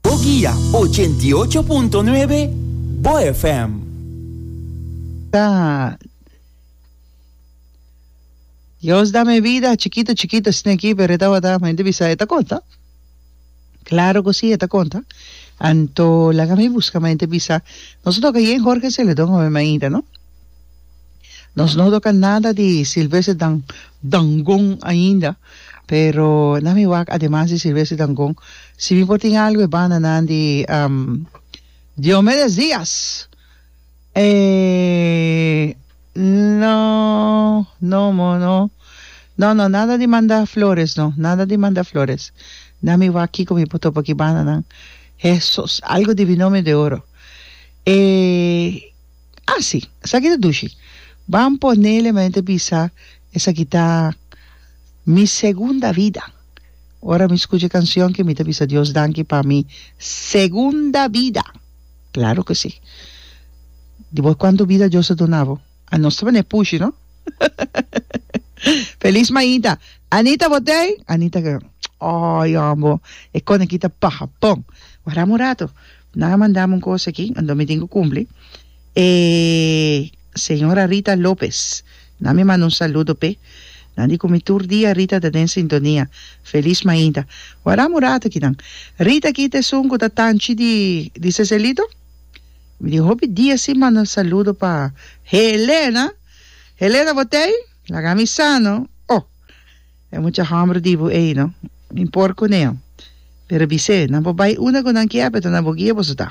Boguia, ochenta i ocho punto nuebe, bo FM. Ta Dios da mi bida chikito chikito sneki pero e tabata mi ta bisa e ta konta klaro ku si e ta konta anto laga mi buska mi ta bisa nos a toka yen Jorge Celedon obe mainta no Nos no toca nada di silvese dan dangon ainda pero na mi wak ademas di silvese dangon si mi por tin algo e bananan di um Diomedes Diaz e no no moh no no no nada di manda flores no nada di manda flores na mi wak kico mi por topa ki bananan hesus algo di binomio de oro e Así, esaki ta dushi. Ban ponele men ta bisa, Esaki ta mi segunda vida. Ora mi skucha e kanshon ke mi ta bisa Dios danki pa mi segunda vida. Klaro ke sí. Di bo kuantu bida Dios a duna bo? A nos ta manera pushi, no? Feliz mainta. Anita bo tei? Anita, Ay, homber, e koneki ta paha bon. Wardá me un rato. Nan a mandami un cos aki, anto mi tin cu cumpli. E Señora Rita Lopez, nan mi manda un saludo p'e. Nan di cu mi tur dia Rita ta den sintonia. Feliz mainta. Warami un rato aki nan. Rita aki ta esun cu ta tanchi di di Seselito? Mi tin hopi dia si manda saludo pa Helena. Helena bo ta ey? Lagami sano. Oh! E mucha homber di bo ey no impor cunen pero bisé nan por bay unda cu nan kier beto nan bo guia boso ta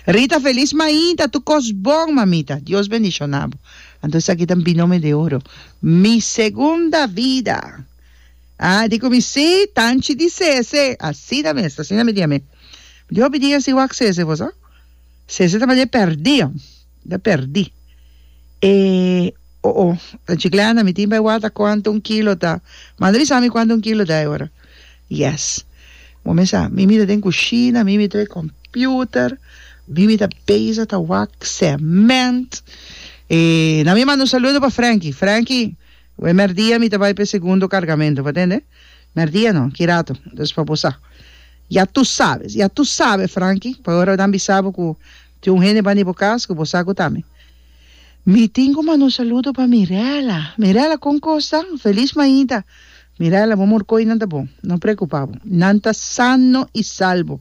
Rita feliz mainta tu cos bon mamita Dios bendicionabo anto esaki ta mi nome de oro mi segunda vida ah di cu mi si tanchi di sese asina mes asina mi diami mi di hopi dia si wak sese boso sese ta madi perdido. ta perdi e o o ta chiclana mi tin bay wata cuanto un kilo ta manda bisa mi cuanto un kilo ta e ora yes bo mesa mi mi ta den cushina mi mi trae computer mi mi ta beza ta wak cement e nan mi manda un saludo pa Franky Franky we merdia mi ta bay pe segundo cargamento bo tende merdia no kirato entonces pa bo sa ya tu sabe ya tu sabe Franky pasobra nan bisa bo ku Tin un hende bani bo cas cu bo sa cu ta mi. Mi tin cu manda un saludo pa Mirela. Mirela, con cos ta? Feliz mainta. Mirela, bo morcoinan ta bon. No preocupa bo. Nan ta sano y salbo.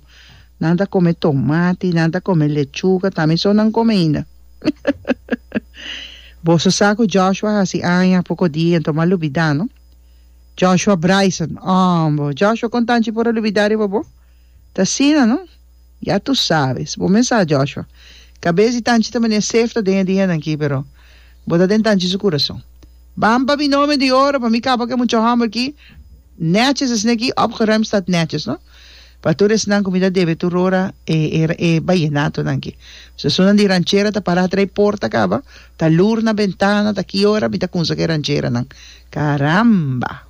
Nan ta come tomati, nan ta come lechuga, ta mi so nan come ainda. Boso sa cu Joshua haci aña poco dia, enton m'a lubida, no? Joshua Bryson, Ambo, Joshua con tanchi por a lubida riba bo? Ta asina, no? Ya tu sabe. Si bo mes sa, Joshua, cabes di tanchi ta mania sef ta den e dia nan ki, pero bo ta den tanchi su curason. Ban pa mi nome di oro, pa mi capa cu e mucha homber ki, netjes esne aki, opgeruimd stat netjes, no? Pa tur esnan cu mi ta debe tur ora e, e, e bayenato-nan ki. Sesunnan di ranchera ta para atrás e porta caba, ta lur na bentana, ta ki ora mi ta cunsa cu e rancheranan. Caramba!